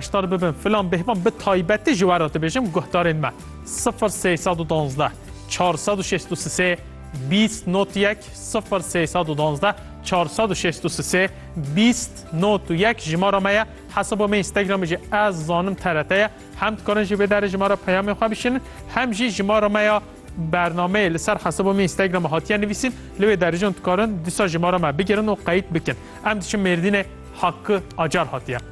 Hişdar bibin filan bêhvan bi taybetî ji we re dibêjim guhdarên me sifir sey sed û duwazdeh çar sed û şêst û sisê bîst not yek sifir sey sed û duwazdeh çar sed û şêst û sisê bîst not û yek jimara me ye hesaba me Instagramê jî ez zanim TRT ye hem dikarin ji vê derê ji me re peyamên xwe bişînin hem jî jimara me ya bernameyê li ser hesaba me Instagramê hatiye nivîsîn li wê derê jî hûn dikarin dîsa jimara me bigirin û qeyîd bikin em diçin Mêrdînê Hakkı Acar hatiye.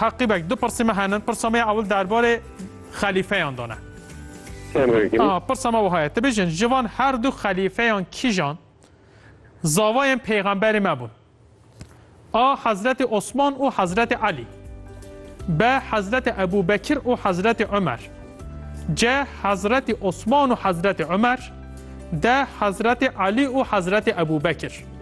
Heqî bek du pirsî me henin. Pirsa me ya ewil derbarê xelîfeyan de ne. Pirsa me wiha ye. Ti bijin ji van her du xelîfeyan kîjan zavayên pêxemberê me bûn? A Hezretê Osman û Hezretê Elî. B Hezretê Ebû Bekir û Hezretê Umer. C Hezretê Osman û Hezretê Umer. D Hezretê Elî û Hezretê Ebû Bekir.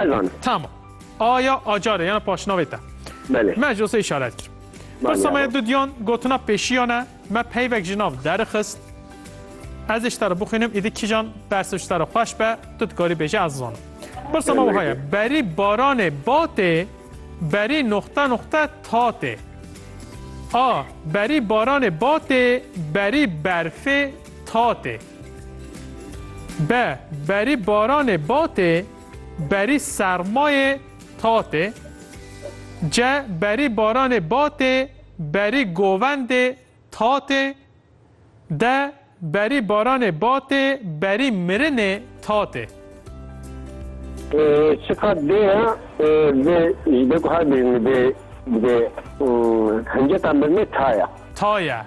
Ez anim. Tamam. Aya Acarê yana paşnavê te. Belê. Me jose işaret kir. Pirsa me dudiyan gotina pêşiyane me peyvek ji nav derixist. Ez ji te re bixwînim îdî kîjan bersiv ji te re xweş be tu dikarî bêje ez zanim. Pirsa me wiha ye berî baranê batê berî noxte noxte tatê. A berî baranê batê berî berfê tatê. Be berî baranê batê, berî sermayê tatê. Ce berî baranê batê, berî govendê tatê. De berî baranê batê, berî mirinê tatê. Sifa dê ya dê ji ber ku her bijî dê dibê hinceta mirinê ta ya. Ta ya.